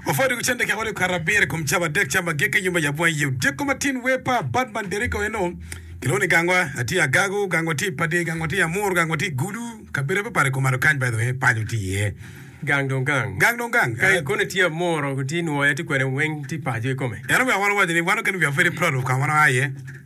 Ofwado iwi cente kekodi okato abiro ikom cam adek, cam agikki i nyumba yabwa iye. Odyeko matin wer pa Badman Derrico eno kilwongo ni gangwa tye agago, gangwa tye padi, gangwa tye amur, gangwa tye gulu. Kabedo mapar ikom aro kany by the way paco tye iye. Gang dong gang. Gang dong gang. Ka eh. koni tye amuro, tye nwoya, tye kwene weng tye paco ikome. En omiyo wan owaco ni wan okene wiwa pwede plot of kama wan oa iye.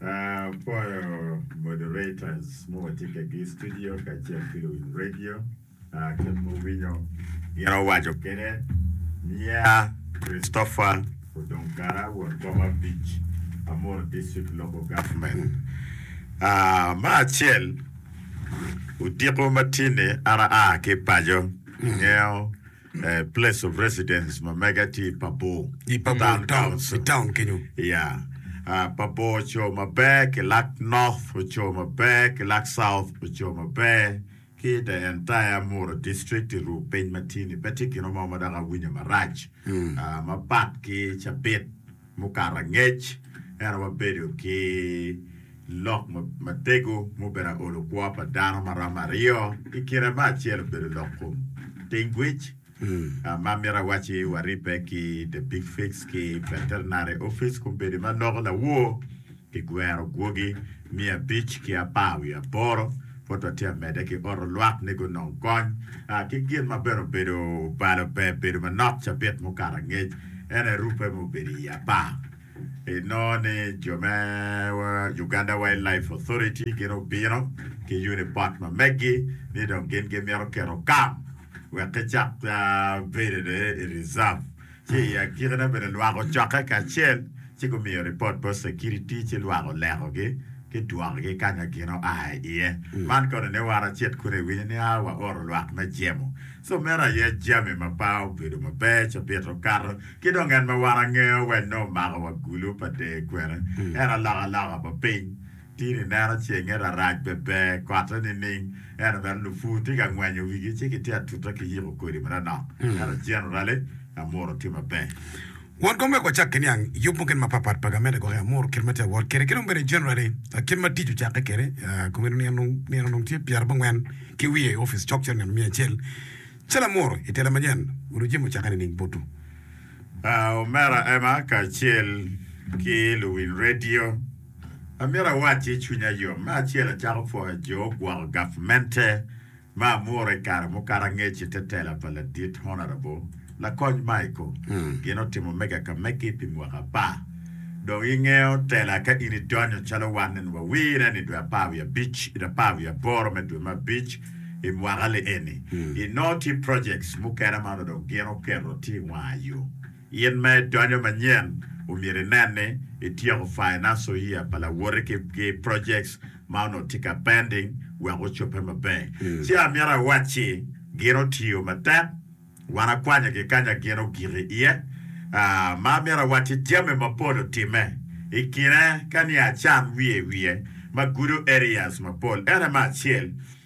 Apwoyo moderators ma watye kegi i studio kacel ki luwiny radio ki muwinyo gin owaco kede. Niya Christopher Odong Kara won boma abic Amuru District Local Government. Me acel odiko ma tye ni an aa ki paco, angeyo me Place of Residence ma mega tye i Pabo, i Pabo Town, Town, Council. i Town kenyo. Ya. Ah, Pabo oco maber ki Lak North, oco maber ki Lak South, oco maber ki the entire Mura District i ruu piny ma tye-ni. Pe tye gino mo ma dok awinyo marac ah, mapat ki cabit. mukato angec, ento wabedo ki lok matego ma obedo aolo kwo pa dano ma romo aryo, i kine ma acel obedo lok kom tengwic, ma amito awacci waribbe ki The Big Fix ki Veterinary Office, kombedo ma noko lawor Pi gwero gwogi miya abic ki apar wiye aboro, pwod wa tye amedde ki oro lwak ni gunong kony ki gin ma bene obedo obalo pe bedo manok cabit mukato angec ene rupe ma obedo i apar. I nongo ni jo me Uganda Wildlife Authority gin obino ki unipot ma meggi ni dong gin gimito keto kam wek ki cak bedo ni i reserve. ci i agikine bene lwako cokke kacel ci gumiyo ripot bot cekiriti ci lwak olekogi ki dwokogi ka nyo gin oa i iye. Man kono ni wara cit kunu iwinyo ni a waoro lwak me jemo. So meno aye jami ma pa obedo maber ci obito okato. Ki dong en ma wara ngeyo wene omako wa gulu pa deyo kwene en alokaloka pa piny. In ineno cenge rarac bene ber kote nining? Ento bene lupur tye ka ngwenyo wigi ci gitye atuta ki yiko kodi ma nonok. Ento generally, amuru tye maber. Won kom wek wacak ki niang yub mukene mapat pat pa gamente gwok i amuru kit ma tye ka wot kwede ki dong bene generally kit ma tic ocakke kwede. Komiti nino nino dong tye pyera abongwen ki wiye i opic cok cito nino miya acel calo amuru i tela manyen gudo jami ocakke nining butu? Omera Emma kacel ki luwiny radio. Amito awacci i cwinya yom, me acel acako pwoyo jo ogwoko gavmente ma amuro i kare mukato angec i te tela pa Ladit Honourable Lakony Michael. Gin otimo mega ka megi pi mwaka apar. Dong ingeyo tela ka in idonyo calo wan eni wawire ni dwe apar wiye abic, i apar wiye aboro me dwe me abic i mwaka li eni, inongo tye projects mukene ma onongo dong gin oketo tye i wanga yo. In ma idonyo manyen, omyero inen ni ityeko financial year pa lawoti ki ki projects ma onongo tye ka pending wek ocobbe maber. Ci amyero awac ci, gin otiyo matek, wan akwanyo gi kanya gin ogik i iye, aa, ma amyero awac ci jami mapol otimme i kine ka ni acan wiye wiye ma gudo areas mapol. Ene me acel,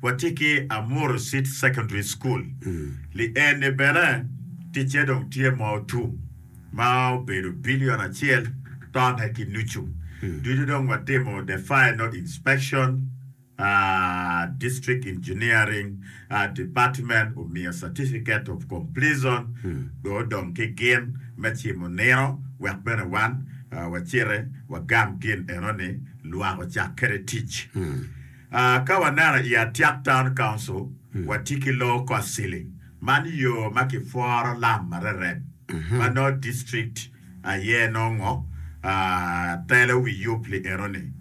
Watye ki Amuru City Secondary School, lienni bene ticce dong tye ma otum ma obedo billion acel tone ki nucu ducu dong watimo the final inspection, District Engineering Department omiyo Certificate of Completion dong odong ki gin me cimo nino wek bene wan waciti wagam gin eno ni lwak ocak kede tic. Ka waneno i Atiak Town Council, watye ki loo kot ceiling. Man yo ma kipworo lam marerek ma nongo district aye nongo telo wi yub li enoni.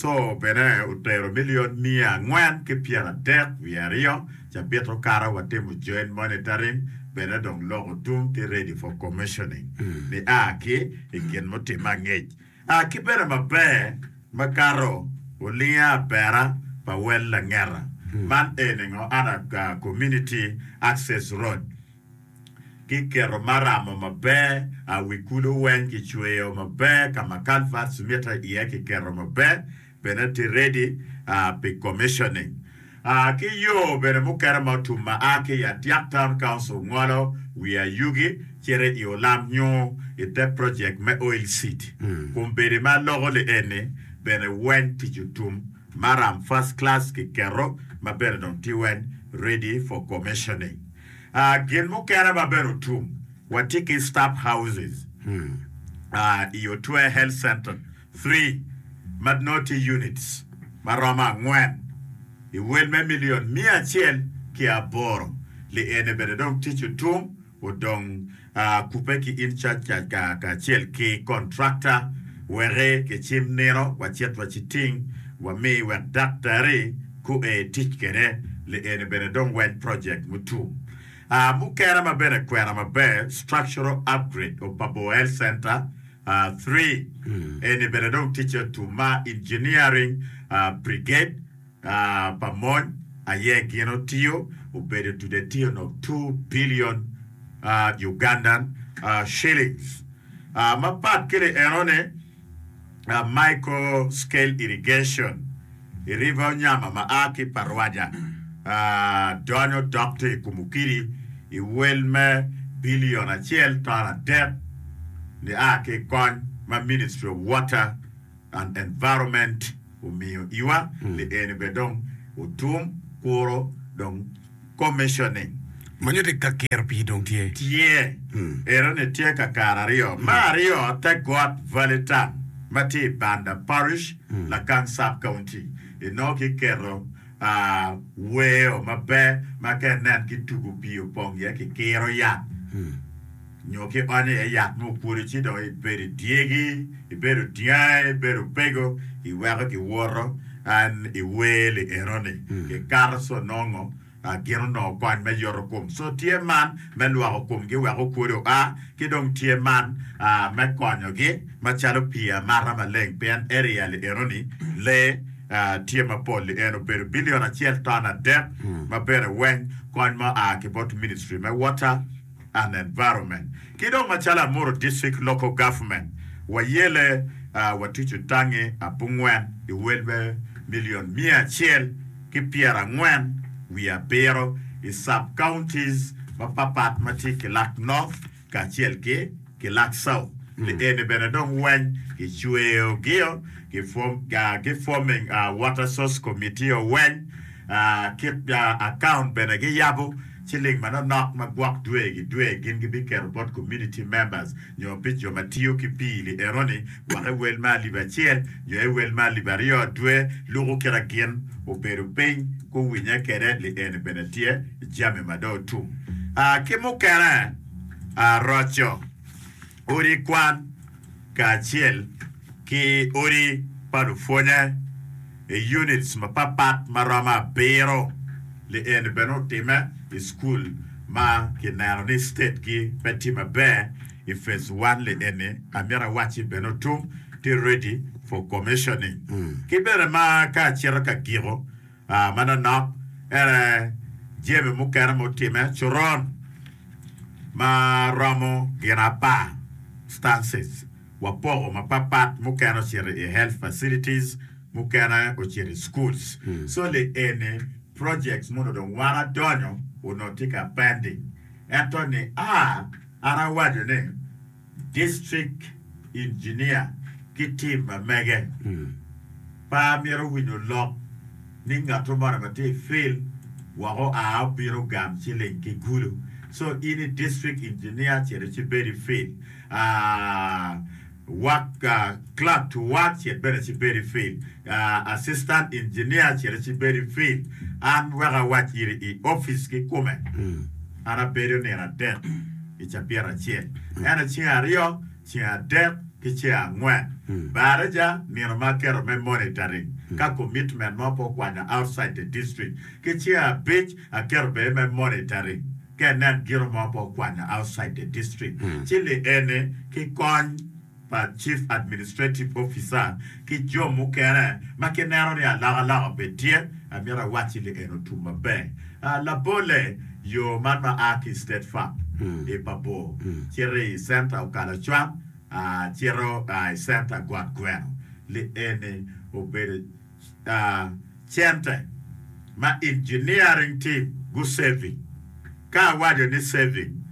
Co bene otero million miya angwen ki pyera adek wiye aryo cabit okato watimo joint monitoring bene dong loko tung ki ready for commissioning ni a ki i gin mutimme angec. A ki bedo maber makato olinga abera pa wel langeta man eni ngo ada community access road ki keto maramo maber a wi kulo weng ki cweyo maber kama culverts mite iye ki keto maber bene tye ready pi commissioning ki yo bene mukene ma otum ma a ki i Adyak Town Council ngolo wi ayugi cito i Olam nyo i te project me Oil City. Kombeddi ma loko li eni bene weng tic otum maram first class ki keto ma bene dong tye weng ready for commissioning. Gin mukene ma bene otum watye ki staff houses i Otwer Health Centre. Three, ma nongo tye units ma romo angwen i wel me milion miya acel ki aboro, li ene bene dong tic otum odong kubbe ki in caca kacel ki kontrakta weki kicim nino wacit waciting wami wek daktari kue tic kede, li ene bene dong weny project mutum. Mukene ma bene kwena maber structural upgrade of Paboa Health Center, Three, eni bene dong ticce otum ma engineering brigade pa mony aye gin otiyo, obedo dude etiyo onongo two billion Ugandan shillings. Mapat ki li enoni, micro scale irrigation. I river onyama ma a ki i Parwaja donyo dok tye i Kumukiri i wel me bilion acel ton adek ni a ki i kony ma Ministry of Water and Environment omiyo iwa ni eni bene dong otum kuro dong Commission-ni. Ma nyuto ni ka kiro pii dong tye. Tye. Ero-ni tye ka kare aryo. Me aryo, te got Valley Town ma tye i Banda Parish, Lacan Sub-County. Inongo kiketo weo maber ma ka inen ki tugo pii opong iye, kikiro yat. Nyo ki ot ni aye yat ma opwodo ci dong ibedo i dyegi, ibedo dyangi, ibedo opego, iweko giwoto an iwer li enoni gikato ci onongo gin onongo kony me yoto kom. So tye man me lwoko komgi wek okwodo oa, ki dong tye man me konyogi macalo pii amata maleng pien area li enoni lee tye mapol li eno obedo billion acel ton adek ma bene weng kony ma oa ki bot ministry me water and Environment, ki dong macalo Amuru District Local Government, wayele, watucu tangi abongwen i welbe million miya acel ki pyerangwen wiye abiro i Sub Counties mapapat ma tye Kilak North kacel ki Kilak South. Pi eni bene dong weny gicweyo gio ki ki forming Water Source Committee-o weny kit account bene giyabo. Ciling manonok ma gwok dwe gi dwe gin gibiketo bot Community Members nyo pi jo ma tiyo ki pii li enoni gwok i wel me alip acel nyo i wel me alip aryo dwe luku kite gin obedo piny guwinye kede li eni bene tye jami ma dong otum ki mukene roco. Odi kwan kacel ki odi pa lupwonye i units mapapat ma romo abiro. Li eni bene otimme i cukul ma kineno ni state gi pe tye maber i phase one li eni amito awacci bene otum tye ready for commissioning. Ki bene ma ka acito ka giko, Manonok ene jami mukene ma otimme, coron ma romo gin apar, stances, wapoko mapatpat, mukene ocito i health facilities, mukene ocito i schools. So le eni projects mono dong wan adonyo onongo tye ka pending. Ento ni a, an awaco ni. District Engineer ki team ma mege pe amito winyo lok ni ngatto moni ma tye i field wek oa obino ogam ciling ki gulu so in i District Engineer cit ci ibed i field Work Clerk to Work cit bene ci ibed i field Assistant Engineer cit ci ibed i field an wek awac giri i office kikume. An abedo nino adek i cabit acel, ento ceng aryo, ceng adek, ki ceng angwen baraja nino ma aketo me monitoring ka commitment mo pe okwanya outside the district, ki ceng abic aketo bene me monitoring ka inen gino mo pe okwanya outside the district, ci li eni ki kony. pa Chief Administrative Officer ki jo mukene ma kineno ni alokaloka pe tye, amito awacci ni en otum maber. Labolle, yo man ma a ki i State Fab i Pabor cito i Center okalo acwang cito i Center got gweno, li eni obedo. cente ma engineering team gusaving. Ka awaco ni saving,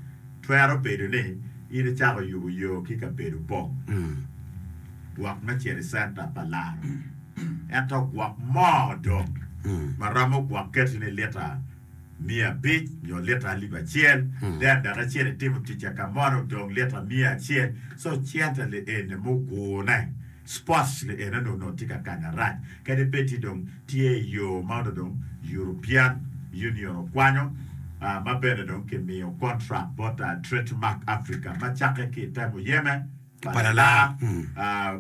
twero bedo ni in icako yubo yo ki kabedo bong gwok me cito i center pa laro, ento gwok mo dong ma romo gwok keti ni lita miya abic nyo lita alip acel, then dok icito itimo ticca ka mono dong lita miya acel, so cente li eni mugune. Sports ni ene dong nongo tye ka kanya rac kadi bed ni dong tye i yo ma onongo dong European Union okwanyo ma bene dong ki miyo contract bot Trade Mark Africa ma cakke ki i te muyeme pa lala,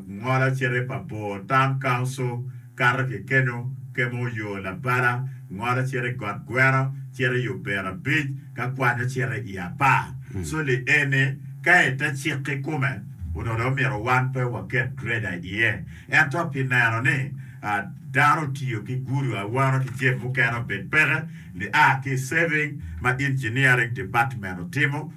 Ngolo cito pa Bor Town Council. kato ki keno, kemo yo labala, ngolo cito i got gweno, cito i ober abic, ka kwanyo cito i apar. Co li e ni, ka i te cik kikome, onongo dong myero wan pe waket greda iye. Ento pi neno ni dano otiyo ki gudo awano ki jeb mukene obed peke, li a ki i saving ma engineering department otimo,